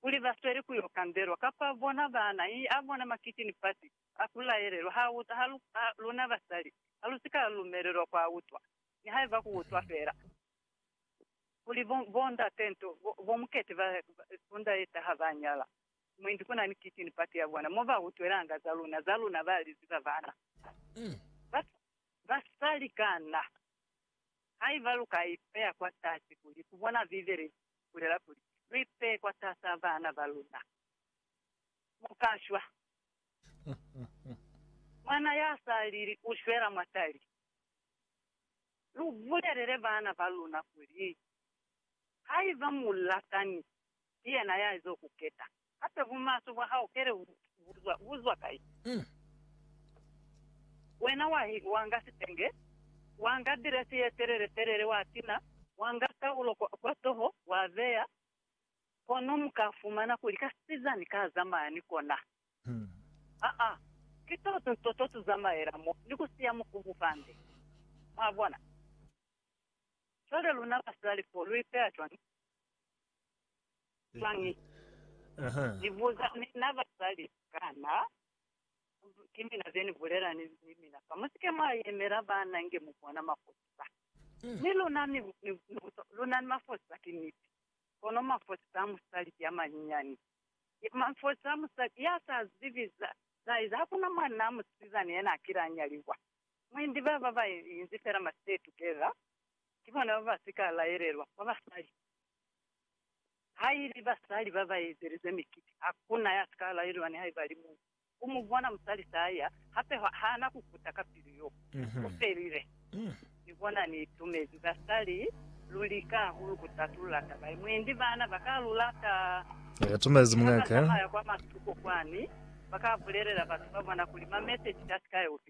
Kuli ba sweli ku yo kambelwa, kapa bona baana, i a bona makiti ni fasi, a ku laelelwa, ha utwa, ha lu, ha, luna basali, ha lu si ka lumelelwa ku a utwa, nihaiba ku utwa fela. Kuli bo, bondate nto, bo, bomukete ba, ba, sunda ye taha ba nyala, mwendi ku na ni kiti ni pati ya bona, mo ba utwelanga za luna, za luna ba li ziba baana. Ba, basali kana? Haiba lu ka ipeya kwatasi kuli ku bona Bibele i bulela kuli lu ipeye kwatasa bana ba luna, mu ka shwa. Mwana ya sa lili u shwela mwa tali. Lu bulelele bana ba luna kuli, Haiba mu latani, ki yena ya z'o ku keta. Hape bumaswe bwa hao pele bu buzwa, bu zwa kai? Mm. Wena wa hi, wa nga sitenge, wa nga diresi ye telele telele, wa tina, wa nga kaulo kwa, kwa toho, wa beya, kono mu ka fumana kuli kasizani ka zamaya ni kona. Mm. Aa, ki to tu, to, to tu zamaela mo, ni ku siya mukubu fande. Mwabona? Cwale luna basali fo, lu ipeya cwañi? Swangi. Aha. Ni buza ni na bazali kana ki mina ze ni bulela ni, ni mina fa. Musike mwa yemela bana inge mu bona mafosi ba. Mm. Mi luna ni, ni, ni buza, luna ni mafosi ba ki niti. Kono mafosi a musali ki a manyinyani. Ya mafosi a musali ya sa zibi za, za eza. Hakuna mwanaa musizana yena akile a nyaliwa. Mwendi baba ba inzi fela ma stay together. Ki bona ba ba si ka laelelwa kwa basali. Haili basali ba ba ezelize mikiti, ha ku na ya si ka laelelwa nihaiba li muñwi. U mu bona musali se a ya, hape ha na ku kuta ka pilu yo. Ku felile. Ni bona ni itumezi. Basali, lu lika hahulu ku tatulula taba ye. Mwendi bana ba ka lu lata. Ni ka tumezi muñ'a ka. Ki ha ba zamaya kwa matuko kwani, ba ka bulelela batu ba bona kuli mameseji a si ka ya ku fita.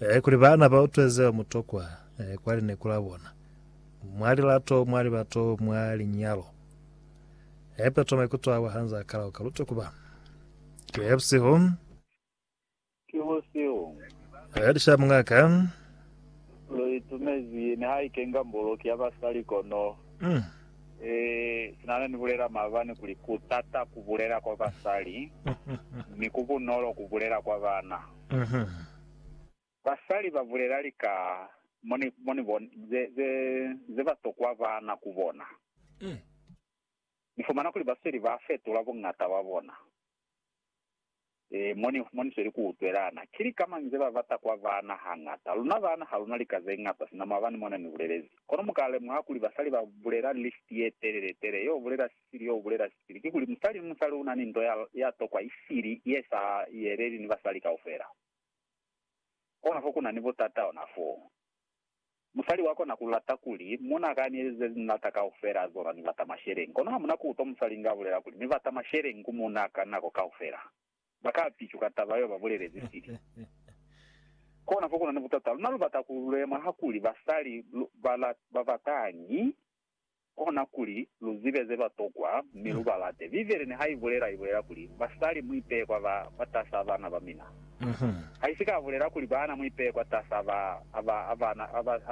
Ee, kuli baana ba utwe zeo mu tokwa ee, kwa lineku la bona, mwa lilato, mwa libato, mwa linyalo. Ee, Petro maikuto awa ha nzaa kala oka lutwe kuba. Ee, busihu. Ki busihu. Ee, lisha muñaka. Lu itumezi ye nihaike nga mboloki ya basali kono. Mm. Ee, sina ne ni bulela maabani kuli ku tata ku bulela kwa basali, mi ku bunolo ku bulela kwa baana. Mhm. Basali ba bulela lika mo ni, mo ni bona, ze, ze, ze ba tokwa bana ku bona. Ni fumana kuli ba sweli ba fetula buñata bwa bona. Ee, mo ni, mo ni sweli ku utwelana. Ki lika mañi ze ba bata kwa bana hañata? Luna bana ha lu na lika ze ñata sina, mwabani mona ni bulelezi. Kono mu ka lemuha kuli basali ba bulela list ye telele tele yeo bulela Sili yo ubulela sili kikuli musali ni musali una ni nto ya ya tokwa isili ye sa yeleli ni basali kaufela. Kona fo kuna ni butata ona foo. Musali wa kona ku lata kuli muna ka ni ezize ze ni lata kaufela zona ni bata masheleñi kono ha muna ku utwa musali nga bulela kuli ni bata masheleñi ku muna ka nako kaufela, ba ka picuka taba yeo ba bulelezi sili. Kona fo kuna ni butata. Luna lu bata ku lemwa hakuli basali ba batañi kona kuli lu zibe ze ba tokwa mi lu ba late. Bibele niha i bulela, i bulela kuli, Basali, mu ipeye kwa ba kwatasa bana ba mina. Ha i si ka bulela kuli, Baana, mu ipeye kwatasa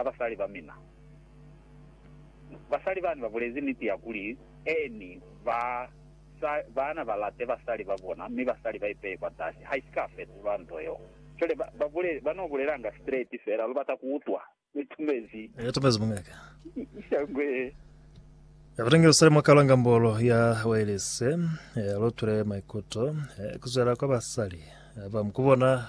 basali ba mina. Basali bani ba bulezi niti ya kuli, Eeni, baana ba late basali ba bona, mi basali ba ipeye kwatasi. Ha i si ka fetulwa nto yeo. Cwale ba no bulelanga straight fela, lu bata ku utwa. Ni tumezi. Ni tumezi mungaka. Shangwe. Ya kutenge usale mwa kalwa ngambolo ya wailese ya lotule maikuto kuzwela kwa basali ba mkubona